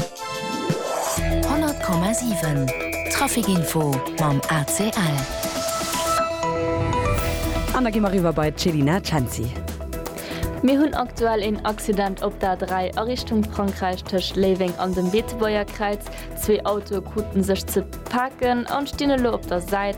100,7 Trafic Info mam ACL. An da gi mer eriwwer bei d'Chelina Cenci. Mir hunn aktuell een Accident op der A3 a Richtung Frankräich tëscht Léiweng an dem Beetebuerger Kräiz. Zwee Autoe kruten sech ze paken an stinn elo op der Säit.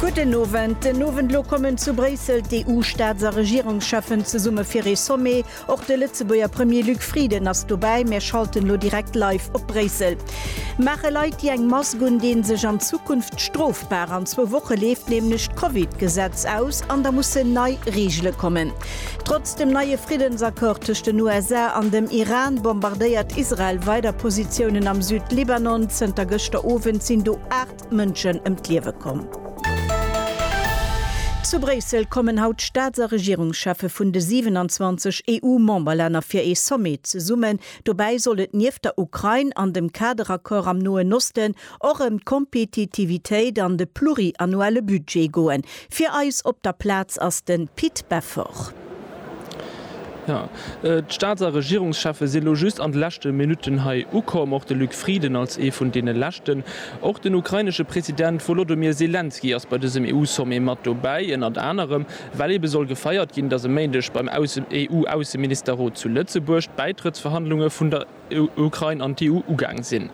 Gudden Owend. Den Owend elo kommen zu Bréissel d'EU-Staats a Regierungscheffen zesumme fir ee Sommet. Och de Lëtzebuerger Premier Luc Frieden ass dobäi. Mir schalten elo direkt live op Bréissel. Maache Leit, déi eng Mask un deen, sech an Zukunft strofbar? An zwou Woche leeft nämlech d'Covid-Gesetz aus an da mussen nei Reegele kommen. Trotz dem neie Friddensaccord tëscht den USA an dem Iran bombardéiert Israel weider Positiounen am Süd-Libanon. Zënter gëschter Owend sinn do 8 Mënschen ëm d'Liewe komm. Zu Bréissel kommen haut d'Staats a Regierungscheffe vun de 27 EU-Memberlänner fir ee Sommet zesummen. Dobäi soll et nieft der Ukrain an dem Kaderaccord am Noen Osten och ëm d'Kompetitivitéit an de pluriannuelle Budget goen. Fir eis op der Plaz ass de Pit Beffort. Jo, d'Staats a Regierungscheffe si lo just an de leschte Minutten hei ukomm, och de Luc Frieden als ee vun deene leschten. Och den ukrainesche President Wolodomir Selenskyj ass bei dësem EU-Sommet mat dobäi, ënnert anerem well ebe soll gefeiert ginn, datt e Méindeg beim EU-Ausseministerrot zu Lëtzebuerg d'Bäitrëttsverhandlunge vun der Ukrain an d'EU ugaang sinn.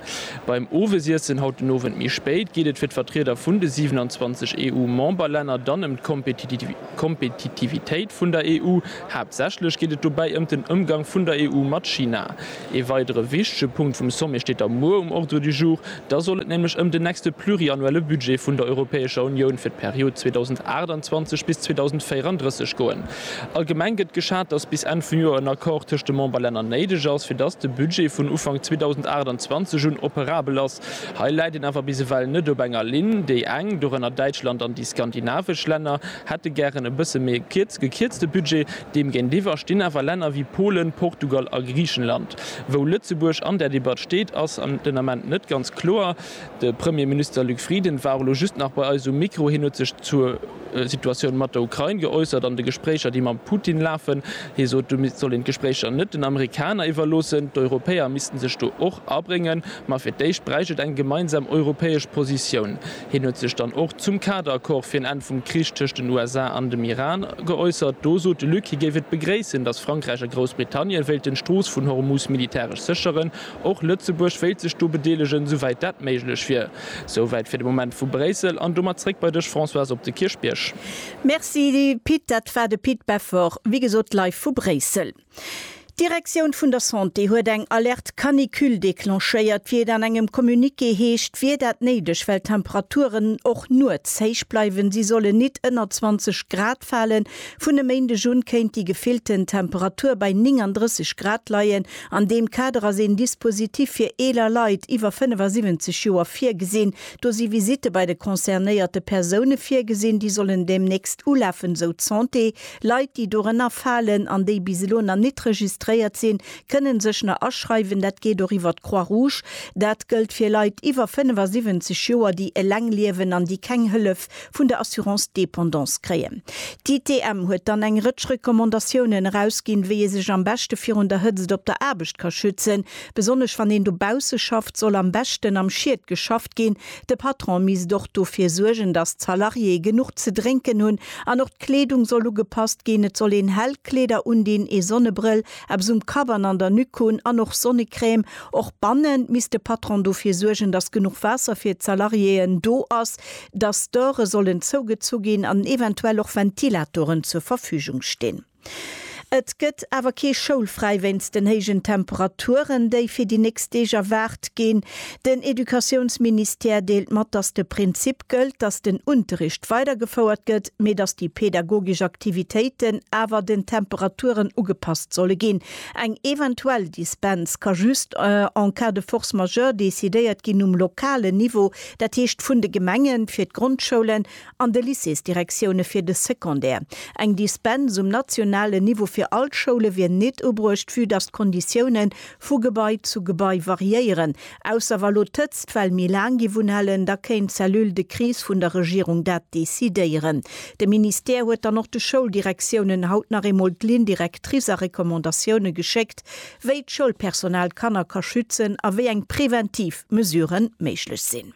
Beim Owesiessen haut den Owend méi spéit geet et fir d'Vertrieder vun de 27 EU-Memberlänner dann ëm d'Kompetitivitéit vun der EU. Haaptsächlech geet et dobäi ëm den Ëmgang vun der EU mat China. Ee weidere wichtege Punkt vum Sommet steet da muer um Ordre du jour. Da soll et nämlech ëm den nächste pluriannuelle Budget vun der Europäescher Unioun fir d'Period 2028 bis 2034 goen. Allgemeng gëtt geschat, dass bis Enn vum Joer en Accord tëscht de Memberlänner néideg ass, fir dass de Budget vun Ufank 2028 un operabel ass. Hei läit een awer bis ewell net op enger Linn. Déi eng, dorënner Däitschland an déi skandinavesch Länner, hätte gären e bësse méi e gekierzte Budget. Deem géintiwwer stinn awer Länner wéi Polen, Portugal a Griichenland. Wou Lëtzebuerg an där Debatt steet, ass den Ament net ganz kloer. De Premierminister Luc Frieden war och elo just nach bei eis um Mikro. Hien huet sech zur. Situatioun mat der Ukrain geäussert an de Gespréicher, déi mam Putin lafen. Hie sot, do soll een d'Gespréicher net den Amerikaner iwwerloossen. D'Europäer missten sech do och abréngen, ma fir d'éischt bräicht et eng gemeinsam europäesch Positioun. Hien huet sech dann och zum Kader-Accord fir en Enn vum Krich tëscht den USA an dem Iran geäussert. Do sot de Luc, hie géif et begréissen, datt Frankräich a Groussbritannien wéilten d'Strooss vun Hormus militäresch sécheren. Och Lëtzebuerg wéilt sech do bedeelegen, souwäit dat méiglech wier. Souwäit fir de Moment vu Bréissel. An domat zréck bei dech Françoise op de Kierchbierg. Merci Pit, dat war de Pit Beffort, wéi gesot live vu Bréissel. D'Direktioun vun der Santé huet eng Alerte Canicule declenchéiert. Wéi et an engem Communiqué heescht, wier dat néideg, well d'Temperaturen och nuets héich bleiwen. Si sollen nit ënner 20 Grad falen. Vun e Méindeg un kéint déi gefillten Temperatur bei 39 Grad leien. An deem Kader ass een Dispositif fir eeler Leit iwwer 75 Joer virgesinn. Do si Visitte bei de concernéierte Persoune virgesinn, déi sollen deemnächst ulafen, esou d'Santé. Leit, déi dorënner falen an déi bis elo nach nit registréiert sinn, kënnen sech nach aschreiwen. Dat geet och iwwer d'Croix Rouge. Dat gëllt fir Leit iwwer 75 Joer, déi eleng liewen an déi keng Hëllef vun der Assurance Dépendance kréien. D'ITM huet dann eng Rëtsch Recommandatiounen erausginn, wéi ee sech am beschte virun der Hëtzt op der Aarbecht ka schützen. Besonnesch wann een dobausse schafft, soll am beschten am Schied geschafft ginn. De Patron misst och dofir suergen, datt d'Salariéë genuch ze drénken hunn. An och d'Kleedung soll ugepasst ginn. Et soll een hell Kleeder undinn, ee Sonnebrëll, eppes um Kapp an an der Nuque hunn an och Sonnecrème. Och bannen misst de Patron dofir suergen, datt genuch Waasser fir d'Salariéeën do ass. dass d'Dore sollen zougezu ginn an eventuell och Ventilatoren zur Verfügung stinn. Et gëtt awer kee schoulfräi wéinst den héijen Temperaturen, déi fir déi nächst Deeg erwaart ginn. Den Educatiounsministère deelt mat, dass de Prinzip gëllt, dass den Unterricht weidergefouert gëtt, mee dass déi pedagogesch Aktivitéiten awer den Temperaturen ugepasst solle ginn. Eng eventuell Dispens ka just en cas de force majeure decidéiert ginn um lokalen Niveau, Dat heescht vun de Gemenge fir d'Grondschoulen an de Lycéesdirektioune fir de Secondaire. Eng Dispens um nationalen Niveau fir all d'Schoule wier nit ubruecht, vue dass d'Konditioune vu Gebai zu Gebai variéieren. Ausser wa lo d'Hëtzt well méi laang géif unhalen, da kéint d'Cellule de crise vun der Regierung dat decidéieren. De Ministère huet dann och de Schouldirektiounen haut nach eemol d'Ligne directrice a Recommandatioune geschéckt, wéi d'Schoulpersonal d'Kanner ka schützen a wéi eng preventiv Mesuren méiglech sinn.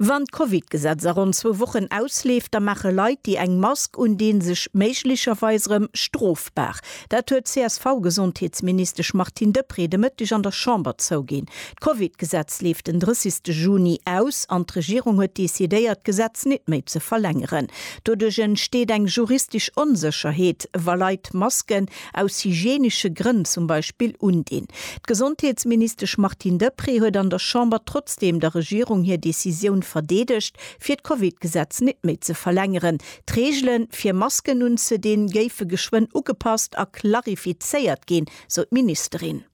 Wann d'Covid-Gesetz a ronn zwou Wochen ausleeft, da maache Leit, déi eng Mask undinn, sech méiglecherweis erëm strofbar. Dat huet d'CSV-Gesondheetsministesch Martine Deprez de Mëtteg an der Chamber zouginn. D'Covid-Gesetz leeft den 30 Juni aus an d'Regierung huet decidéiert, d'Gesetz nit méi ze verlängeren. Doduerch entsteet eng juristesch Onsécherheet, wa Leit Masken, aus hygienesche Grënn zum Beispill undinn. D'Gesondheetsministesch Martine Deprez huet an der Chamber trotzdeem der Regierung hir Decisioun verdeedegt, fir d'Covid-Gesetz net méi ze verlängeren. D'Reegele fir Masken unzedinn, géife geschwënn ugepasst a klarifizéiert ginn, sou d'Ministerin.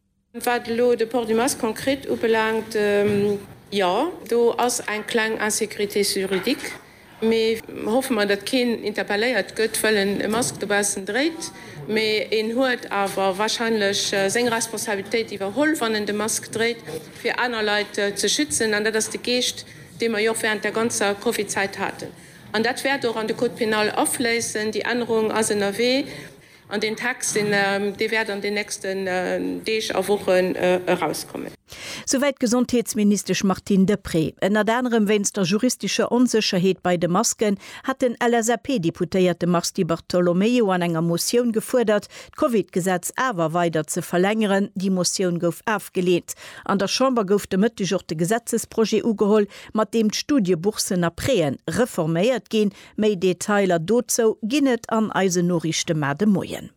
Wat elo de Port du Masque konkret ubelaangt, jo, do ass eng kleng Insécurité juridique, mee hoffe mer, datt keen interpelléiert gëtt, well en e Mask dobaussen dréit. Mee en huet awer warscheinlech seng Responsabilitéit iwwerholl, wann en de Mask dréit, fir aner Leit ze schützen. An dat ass de Geescht, dee mer jo och während der ganzer Covid-Zäit haten. An dat wäert och an de Code pénal afléissen. Déi Ännerung ass ënnerwee. An deen Text, dee wäert an den nächsten Deeg a Wochen erauskommen. Souwäit d'Gesondheetsministesch Martine Deprez. Ënnert anerem wéinst der juristescher Onsécherheet bei de Masken hat den LSAP-Deputéierte Mars Di Bartolomeo an enger Motioun gefuerdert, d'Covid-Gesetz awer weider ze verlängeren. Déi Motioun gouf afgeleent. An der Chamber gouf de Mëtteg och de Gesetzesprojet ugeholl, mat deem d'Studieboursen a Préen reforméiert ginn. Méi Detailer dozou ginn et an eisen Noriichte mar de Moien.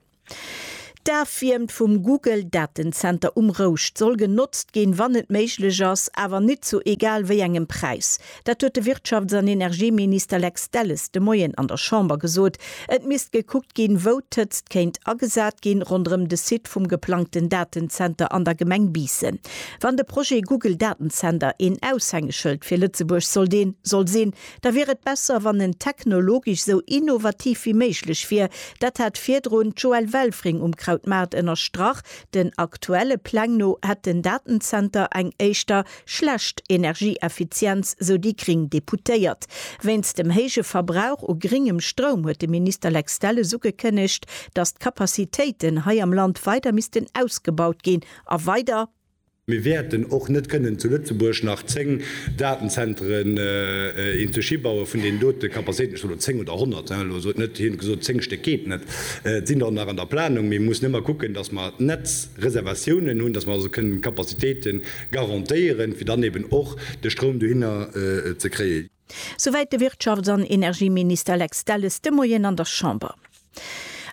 D'Afwiermt vum Google Datenzenter um Rouscht soll genotzt ginn, wann et méiglech ass, awer nit zu egal wéi engem Präis. Dat huet de Wirtschafts an Energieminister Lex Delles de Moien an der Chamber gesot. Et misst gekuckt ginn, wou d'Hëtzt kéint agesat ginn, ronderëm de Site vum geplangten Datenzenter an der Gemeng Biissen. Wann de Projet Google Datenzenter een Aushängeschëld fir Lëtzebuerg sollt een soll sinn, Da wier et besser, wann en technologesch esou innovativ wéi méiglech wier. Dat hat virdrun d'Joëlle Welfring um Krautmaart ënnerstrach. Den aktuelle Pläng no hätt den Datenzenter eng éischter schlecht Energieeffizienz, sou déi gring Deputéiert. Wéinst dem héije Verbrauch u gringem Stroum huet de Minister Lex Delles ugekënnegt, datt d'Capacitéiten hei am Land weider missten ausgebaut ginn a weider, Mir wäerten och net kënnen zu Lëtzebuerg nach zéng Datenzentren in d'Schi bauen, vun deenen dote Capacitéiten, ech soen elo zéng oder honnert, hein, elo sot net, hien huet gesot, zéng Stéck geet net, et sinn der och nach an der Planung, mee mir mussen ëmmer kucken, dass mer d'Netzreservatiounen hunn, dass mer also kënnen d'Capacitéite garantéieren, fir dann eben och de Stroum dohinner ze kréien. Souwäit de Wirtschafts an Energieminister Lex Delles de Moien an der Chamber.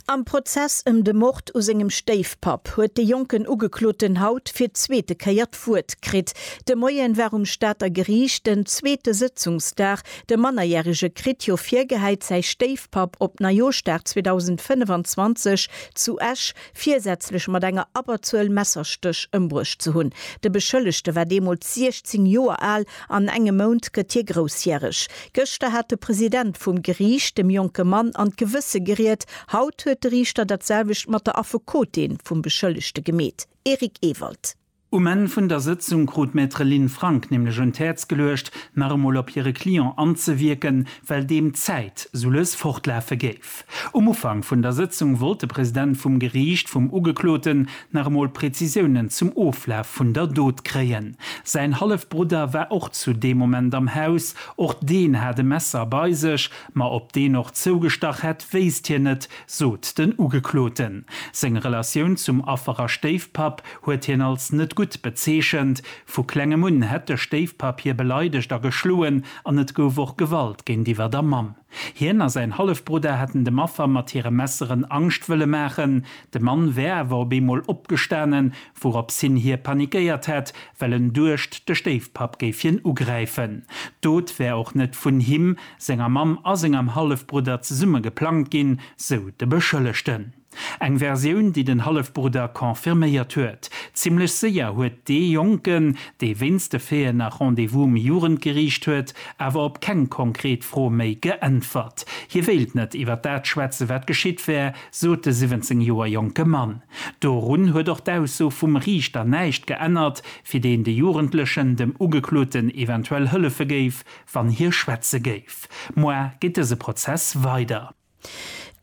Am Prozess ëm de Mord u sengem Stéifpapp huet de jonken Ugekloten haut fir d'zweete Kéier d'Wuert kritt. De Moien war um Stater Geriicht den zweete Sëtzungsdag. De Mannerjärege kritt jo virgehäit, säi Stéifpapp op Neijooschdag 2025 zu Esch virsätzlech mat enger Abberzuel Messerstéch ëmbruecht ze hunn. De Beschëllegte war deemools 16 Joer al, an engem Mount gëtt hie groussjäreg. Gëschter hat de President vum Geriicht dem jonke Mann an d'Gewësse geriet, haut huet de Riichter dat selwecht mat der Affekotin vum Beschëllegte gemeet. Eric Ewald. Um Enn vun der Sëtzung krut Maître Lynn Frank nämlech un d'Häerz geluecht, nach emol op hire Client anzewierken, well deem d'Zäit sou lues fortlafe géif. Um Ufank vun der Sëtzung wollt de President vum Geriicht vum Ugekloten nach emol Prezisiounen zum Oflaf vun der Dot kréien. Säin Hallefbrudder war och zu deem Moment am Haus. Och deen hat e Messer bei sech, ma ob deen och zougestach hätt, wéisst hien net. sot den Ugekloten. Seng Relatioun zum Affer a Stéifpapp huet hien als net gutt bezeechent. Vu klengem un hätt de Stéifpapp hie beleidegt a geschloen an et gouf och Gewalt géintiwwer der Mamm. Hien a säin Hallefbrudder hätten dem Affer mat hire Messeren Angscht wëlle maachen. De Mann wär awer op eemol opgestanen, Wourop s'hin hie panikéiert hätt, well en duecht, de Stéifpapp géif hien ugräifen. D'Dot wär och net vun him, senger Mamm a sengem Hallefbrudder zesumme geplangt ginn, sou de Beschëllegten. Eng Versioun, déi den Hallefbrudder confirméiert huet. Zimmlech séier huet dee Jonken, dee wéinst de Feeën nach Rendez-vous um Jugendgeriicht huet, awer op keng konkret Fro méi geäntwert. Hie wéilt net iwwer dat schwätzen, wat geschitt wär, sot de 17 Joer jonke Mann. Dorun huet och d'Ausso vum Riichter näischt geännert, fir deen de Jugendlechen dem Ugekloten eventuell hëllefe géif, wann hie schwätze géif. Moar geet dëse Prozess weider.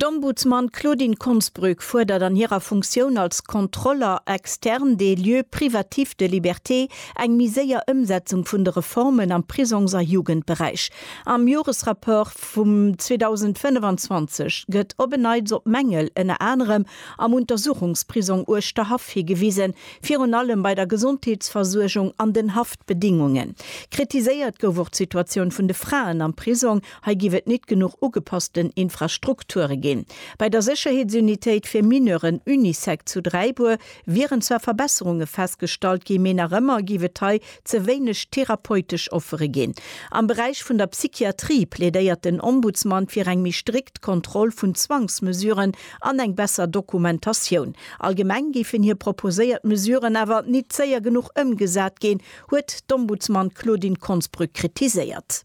D'Ombudsman Claudine Konsbrück fuerdert an hirer Funktioun als Contrôleur externe des lieux privatifs de liberté eng méi séier Ëmsetzung vun de Reformen am Prisongs a Jugendberäich. Am Joresrapport. vum 2025 gëtt op en Neits op Mängel ënner anerem am Untersuchungsprisong Uerschterhaff higewisen, virun allem bei der Gesondheetsversuergung an den Haftbedingungen. Kritiséiert gouf och d'Situatioun vun de Fraen am Prisong, hei giff et nit genuch ugepassten Infrastrukture ginn. Bei der Sécherheetsunitéit fir Mineuren Unisec zu Dräibuer wieren zwar Verbesserunge festgestallt ginn, mee nach ëmmer giff et hei ze wéineg therapeutesch Offere ginn. Am Beräich vun der Psychiatrie plädéiert den Ombudsman fir eng méi strikt Kontroll vun Zwangsmesuren an eng besser Dokumentatioun. Allgemeng géifen hir proposéiert Mesuren awer nit séier genuch ëmgesat ginn, huet d'Ombudsman Claudine Konsbrück kritiséiert.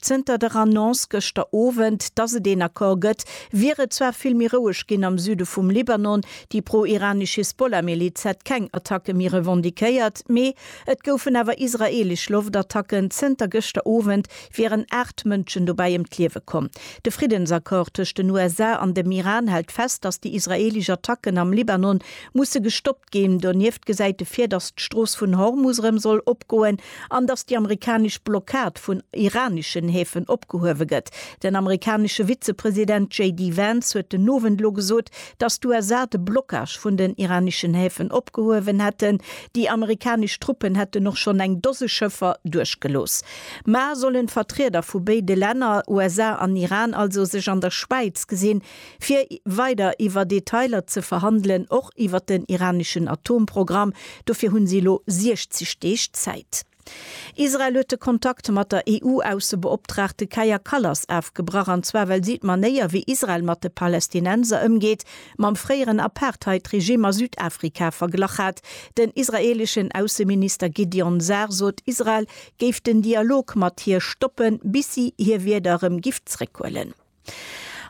Zënter der Annonce gëschter Owend, dass et een Accord gëtt, wier et zwar vill méi roueg ginn am Süde vum Libanon. Déi pro-iranesch Hisbollah-Miliz hätt keng Attacke méi revendiquéiert, mee et goufen awer israeelesch Loftattacken. Zënter gëschter Owend wieren aacht Mënschen dobäi ëm d'Liewe komm. De Friddensaccord tëscht den USA an dem Iran hält fest, dass déi israeelesch Attacken am Libanon musse gestoppt ginn. ginn. Donieft gesäit e vir, datt d'Strooss vun Hormus erëm soll opgoen an datt déi amerikanesch Blockad vun iraneschen Häfen opgehuewe gëtt. Den amerikanesche Vizepresident JD Vance huet den Owend elo gesot, datt d'USA de Blockage vun den iraneschen Häfen opgehuewen hätten. Déi amerikanesch Truppen hätten och schonn eng Dose Schëffer duerchgelooss. Mar sollen d'Vertrieder vu béide Länner, USA an Iran, also sech an der Schwäiz gesinn, fir weider iwwer Detailer ze verhandelen, och iwwer den iraneschen Atomprogramm. Dofir hunn si elo 60 Deeg Zäit. Israel huet de Kontakt mat der EU-Aussebeoptraagte Kaja Kallas afgebrach, an zwar well si d'Manéier, wéi Israel mat de Palästinenser ëmgeet, mam fréieren Apartheid-Regimm a Südafrika verglach hat. Den israeeleschen Ausseminister Gideon Sar sot, Israel géif den Dialog mat hir stoppen, bis si hir Wierder erëm giff zeréckhuelen.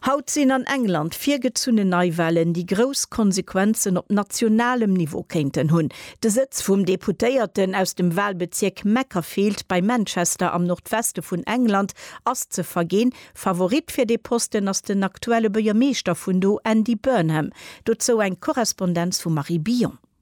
Haut sinn an England virgezunnen Neiwahlen, déi grouss Konsequenzen op nationalem Niveau kéinten hunn. De Sëtz vum Deputéierten aus dem Wahlbezierk Macclesfield bei Manchester am Nordweste vun England ass ze verginn. Favorit fir dee Posten ass den aktuelle Buergermeeschter vun do, Andy Burnham. Dozou eng Korrespondenz vum Marie Billon.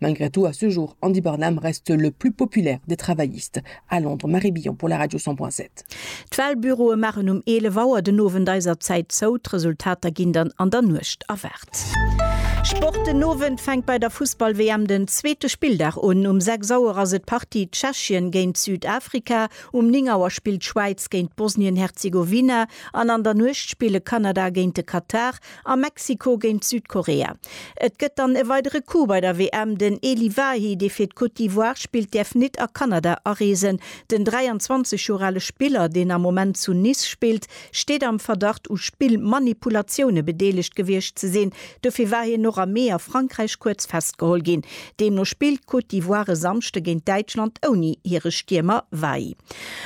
Malgré tout, à ce jour, Andy Burnham reste le plus populaire des travaillistes à Londres. Marie Billon pour la Radio 100.7. D'Walbüroe maachen um 11 Auer den Owend eiser Zäit zou, d'Resultater ginn dann an der Nuecht erwaart. Sport, Den Owend fänkt bei der Fussball-WM den zweete Spilldag un. Um 6 Auer ass et d'Partie Tschechien géint Südafrika, um 9 Auer spillt d'Schwäiz géint Bosnien-Herzegowina an an der Nuecht spille Kanada géint de Katar A Mexiko géint Südkorea. Et gëtt dann e weidere Coup bei der WM, Den Elie Wahi, dee fir d'Côte d'Ivoire spillt, däerf nit a Kanada areesen. Den 23 Joer ale Spiller, deen am Moment zu Nice spillt, steet am Verdacht u Spillmanipulatioune bedeelegt gewiescht ze sinn. Dofir war hien och am Mee a Frankräich kuerz festgeholl ginn. Deemno spillt d'Côte d'Ivoire e Samschde géint Däitschland ouni hire Stiermer Weigl.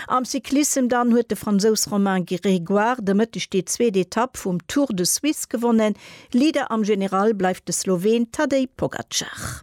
Am Cyclissem dann huet de Fransous Romain Grégoire de Mëtteg déi zweet Etapp vum Tour de Suisse gewonnen. Leader am General bleift de Sloween Tadej Pogacar.